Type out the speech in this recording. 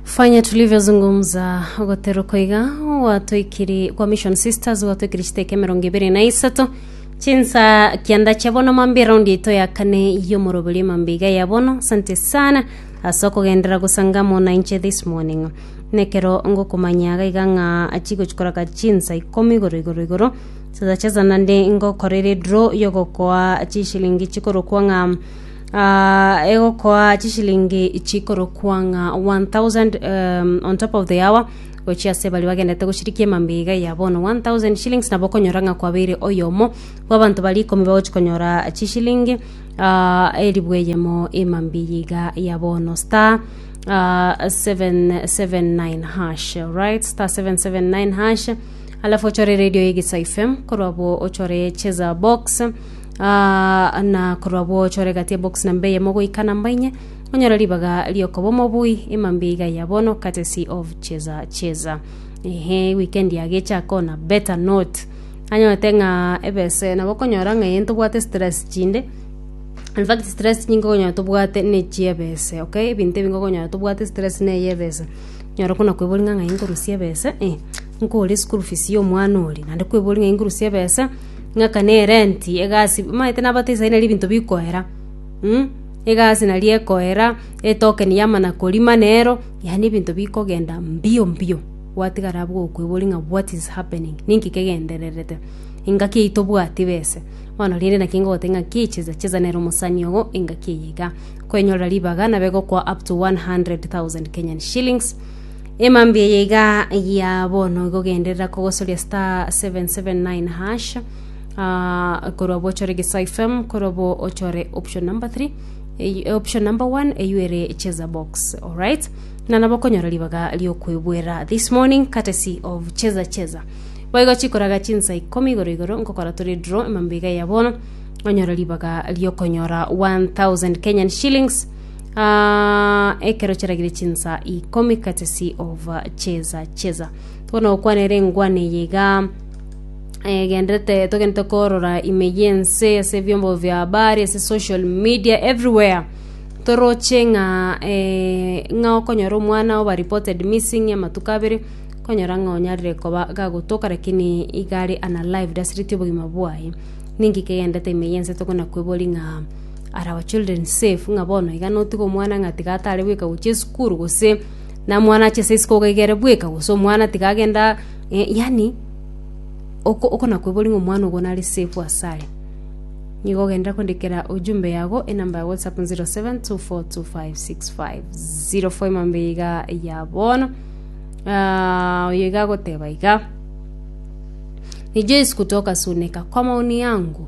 fanya tulivyozungumza ogotero koiga gwatoikiri kwa mission sisters gwatoikiri chiteke mirongo ibere na isato chinsa kianda chia bono mambi raundi yaito ya kane yomoroberi mambi iga ya bono asante sana ase okogendera gosangamo na inche this morning nekero ngokomanya iga iga ng'a achigochikoraka chinsa ikomi igoro igoro igoro sasa chesa nande ngokorere draw yogokoa chishilingi chikorokwa ng'a egokoa chishilingi chikorokwa ng'a 1000 um, on top of the hour gochia ase baria bagendete goshirikia emambiga ya bono 1000 shillings nabo okonyora ng'a kwabeire oyomo bw'abanto bari ikomi bagochi konyora chishilingi ah, elibu eyemo emambiga ya bono star ah, 779 hash right star 779 hash alafu ochore radio ya Gisa FM korwa bo ochore cheza box Aa, na korwa gwochore gati ya box namba eyemo goika namba inye, onyore ribaga riokoba omobui ema mbuya iga ya bono, courtesy of Cheza Cheza. Ehe, weekend yagecha akona better note. Anyorete ng'a ebese nabo okonyora ng'a eye ntobwate stress chinde, in fact stress nyinge okonyora tobwate ne chiebese, okay? Ebinto ebinge okonyora tobwate stress neye ebese. Nyora okona kweboria ng'a ng'ai nkorusia ebese? Eh. Nkore school fees y'omwana oria, naende kweboria ng'a ingurusie ebesa, ng'aka na erenti, egasi, omanyete nabatebi sai nari ebinto bikoera, mh, egasi nari ekoera, etokeni y'amana korima nero, yaani ebinto bikogenda mbio mbio, gwatigara abwo okoeboria ng'a what is happening, ninki kegendererete? engaki eye tobwati bese, bono rende naki ngogotebi ng'a ki chesa chesa nere omosani ogo engaki eye iga, kwenyorera ribaga nabe egokoa up to 100,000 Kenyan shillings. Emambia eye iga ya bono igogenderera kogosoria star 779#, ah, korwa bochore gesa FM, korwa bo ochore option number 3, ey- option number 1 eyu ere cheza box alright na nabo okonyora ribaga riokwebwera this morning courtesy of cheza cheza boigo chikoraga chinsa ikomi igoro igoro nkokora tore draw emambia iga ya bono onyore ribaga riokonyora 1000 kenyan shillings Ah, ekero chiragire chinsa ikomi katesi of cheza cheza tokona gokwana ere engwane eye iga eh, gendete togente korora ime yense ase ebiombo bia habari ase social media everywhere toroche ng'a eh, ng'a okonyora omwana oba reported missing amatuko abere okonyora ng'a onyarire koba gagotoka lakini iga are unalived asireti obogima bwaye ninki kegendete ime yense tokona kwebori ng'a Are our children safe ng'a bono iga notige omwana ng'a tiga atare bweka gochia esukuru gose na mwana ache ase isiko iga ere bweka gose omwana tiga agenda eh yaani oko- okona koiboria ng'a omwana ogo nare safe ase are. Nigo ogenderere kondikera ujumbe yago enamba ya whatsapp 0724256504 ofaima mbe iga ya bono oyo iga agoteba iga, Nijesu kutoka suneka kwa maoni yangu.